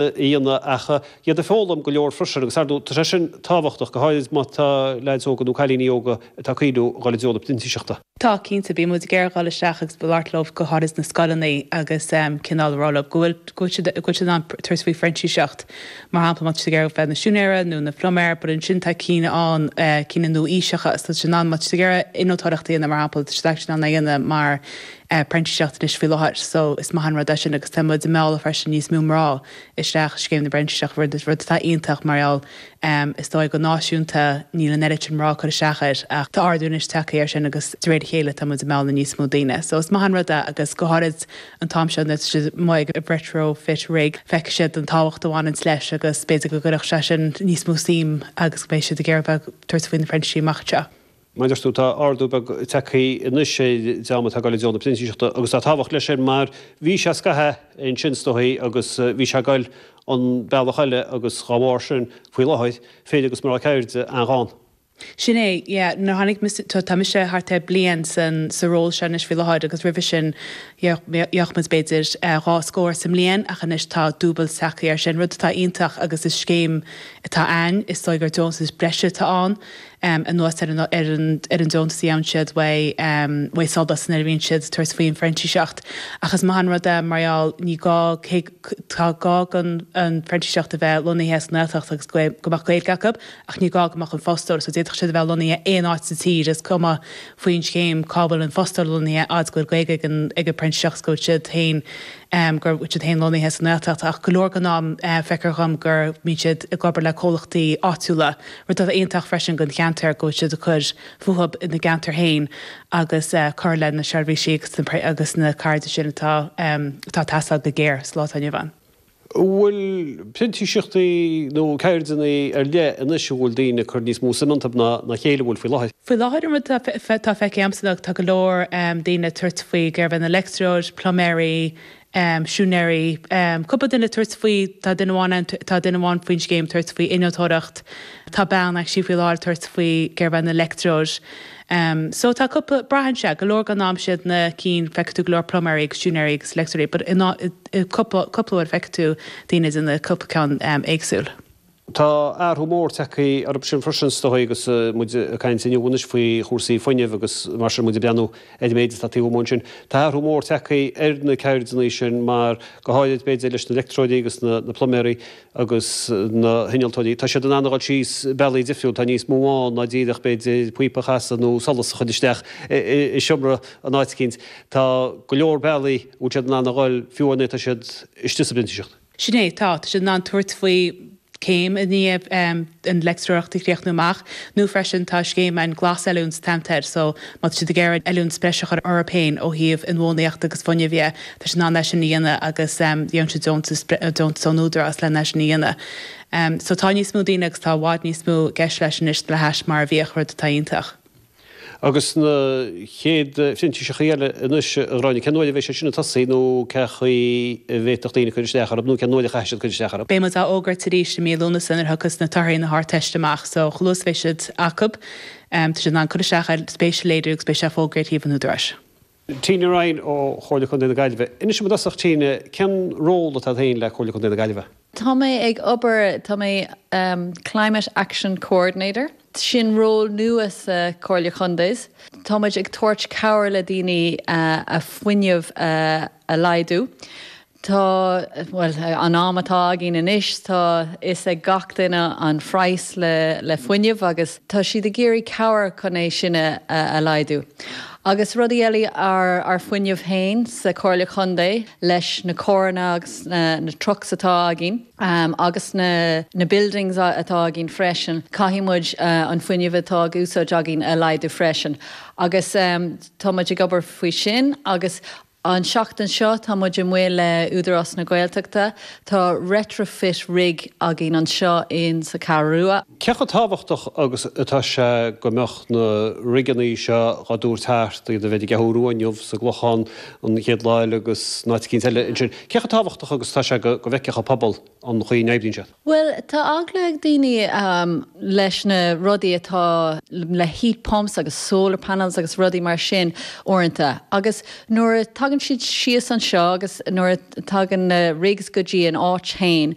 dhéanamh ach iad ag foghlaim go leor freisin agus ar ndóigh tá sé sin tábhachtach, go háirid má tá leaids óga nó cailíní óga atá ag cuimhniú dul i dtreo na printíseachta. Tá, cinnte. Bíonn muid ag iarraidh dhul isteach agus labhairt leo, go háirid sna scoileanna agus cineál a rá leo go bhfuil, go bhfuil siad, go bhfuil siad in ann tabhairt faoi phrintíseacht. Mar shampla, má tá siad ag iarraidh bheith ina siúinéara nó ina phluiméir but ansin tá cinn ann, cinn nua-aoiseacha, so tá siad in ann, má tá siad ag iarraidh innealtóireacht a dhéanamh mar shampla, tá siad actually in ann é a dhéanamh mar, phrintíseacht anois faoi láthair so is maith an rud é sin agus tá muid ag mealladh freisin níos mó mná isteach i scéim na bprintíseach rud atá iontach mar gheall is dóigh go náisiúnta níl an oiread sin mná ag cur isteach air ach tá ardú anois tagtha air sin agus de réir a chéile tá muid ag mealladh níos mó daoine so is maith an rud é agus go háirid an t-am seo nuair atá siad amuigh ag retrofit rig feicfidh siad an tábhacht a bhaineanns leis agus b'fhéidir go gcuirfeadh sé sin níos mó suim agus go mbeidh siad ag iarraidh bheith ag tabhairt faoi na printísí amach anseo. Mar a deir tú, tá ardú beag tagtha anois ar an dream atá ag dul i dtreo na printíseachta agus tá tábhacht leis sin mar bhí sé scaitheamh ansin is dóigh agus bhí sé ag dul an bealach eile agus dá bharr sin, faoi láthair, fir agus mná ceirde an-ghann. Sin é, yeah. Nuair a tháinig mise, tá mise thart ar bhliain sa ról seo anois faoi láthair agus roimhe sin, bheadh muid b'fhéidir dhá scór sa mbliain ach anois tá dúbailt tagtha air sin, rud atá iontach agus is scéim atá ann, is dóigh gur deontas breise atá ann. em, anuas ar an, ar an, ar an deontas a fhaigheann siad uaidh, em, uaidh SOLAS nuair a bhíonn siad ag tabhairt faoin phrintíseacht. Ach is maith an rud é, mar gheall, ní gá, cé, tá gá don phrintíseach a bheith lonnaithe sa nGaeltacht agus go, go mbeadh Gaeilge acu ach ní gá go mbeadh an fostóir, so d'fhéadfadh siad a bheith lonnaithe aon áit sa tír, is cuma faoin scéim cá bhfuil an fostóir lonnaithe, a fhad is go bhfuil Gaeilge ag an, ag an bprintíseach is go bhfuil siad féin, em, go bhfuil siad féin lonnaithe sa nGaeltacht. Ach go leor den am, eh, feictear dhom go mbíonn siad ag obair le comhlachtaí áitiúla rud atá iontach freisin don cheantar go bhfuil siad ag cur fúthu ina gceantar féin agus ag cur le na seirbhísí agus na ceirde sin atá ag teastáil go géar sa lá atá inniu ann. Bhfuil printíseachtaí nó ceirdeanna ar leith anois a bhfuil daoine ag cur níos mó suim iontu ná a chéile an bhfuil faoi láthair? Faoi láthair, an rud atá feicthe agamsa ná tá go leor daoine ag tabhairt faoi, ag iarraidh bheith ina leictreoir, pluiméirí, siúinéirí. Cúpla duine ag tabhairt faoi, tá duine amháin ann, tá duine amháin faoin scéim ag tabhairt faoi innealtóireacht, tá bean anseo faoi láthair ag tabhairt faoi, ag iarraidh bheith ina leictreoir. So tá cúpla, braitheann sé go leor den am is iad na cinn, feicfidh tú go leor pluiméirí agus siúinéirí agus leictreoirí but i cúpla, cúpla uair feicfidh tú daoine ag déanamh cúpla ceann éagsúil. Tá athrú mór tagtha orthu sin freisin is dóigh agus muid ag caint inniu anois faoi chúrsaí fuinnimh agus mar sin muid ag breathnú ar an méid atá taobh amuigh ansin. Tá athrú mór tagtha ar na ceirdeanna sin mar, go háirid b'fhéidir, leis na leictreoirí agus na pluiméirí agus na hinnealtóirí, tá siad in ann a dhul síos bealaí difriúla, tá níos mó ann ná díreach b'fhéidir píopa a chasadh nó solas a chuir isteach i seomra in áit eicínt. Tá go leor bealaí a bhfuil siad in ann a dhul fiú nuair atá siad istigh sa bprintíseacht. Sin é, tá. Tá siad in ann tabhairt faoi céim i ndiaidh dóibh an leictreoireacht a chríochnú amach, nó freisin tá scéim ann Glasoiliúna a thugtar air, so má tá siad ag iarraidh oiliúint speisialta a chur orthu féin ó thaobh inbhuanaitheachta agus fuinneamh dhe, tá siad in ann é sin a dhéanamh agus faigheann siad deontas, deontas ón Údarás len é sin a dhéanamh. So tá níos mó daoine agus tá i bhfad níos mó i gceist leis anois le hais mar a bhíodh, rud atá iontach. Agus na chéad phrintíseachtaí eile anois, a Ghráinne, cén uair a bheidh siad sin ag tosú nó cé chaoi a bhféadfadh daoine cur isteach orthu nó cén uair a chaithfidh siad cur isteach orthu? Beidh muid á fhógairt arís i mí Lúnasa nuair a thiocfas na torthaí Ardteiste amach so chomh luath is a bheidh siad acu, tá siad in ann cur isteach agus spéis a léiriú agus beidh sé á fhógairt ar shuíomh an Údaráis. Tíne Ryan ó Chomhairle Contae na Gaillimhe. Inis dom i dtosach, Tíne, cén ról atá agat féin le Comhairle Contae na Gaillimhe? Tá mé ag obair, tá mé Climate Action Coordinator, sin ról nua sa Chomhairle Contae. Tá muid ag tabhairt cabhair le daoine an fuinneamh a laghdú. Tá, bhuel, an am atá againn anois, tá fhios ag gach duine an phraghas le, le fuinneamh agus tá siad ag iarraidh cabhair chun é sin a, a laghdú. Agus rudaí eile, ár, ár fuinneamh fhéin sa Comhairle Chontae leis na carranna agus na, na trucks atá againn agus na, na buildings atá againn freisin, caithfidh muid an fuinneamh atá ag úsáid againn a laghdú freisin agus tá muid ag obair faoi sin agus. An tseachtain seo tá muid amuigh le Údarás na Gaeltachta. Tá retrofit rig againn anseo in sa Ceathrú Rua. Cé chomh tábhachtach agus atá sé go mbeadh na rigeanna seo dhá dtabhairt thart, iad a bheith ar an gCeathrú Rua inniu sa gClochán an chéad lá eile agus in áit eicínt eile ansin. Cé chomh tábhachtach agus atá sé go bhfeicfeadh an pobal, an chaoi a n-oibríonn siad. Bhuel, tá eagla ag daoine leis na rudaí atá le heat pumps agus solar panels agus rudaí mar sin uaireanta agus nuair a tagann siad síos anseo agus nuair a tagann na rigs go dtí an áit féin,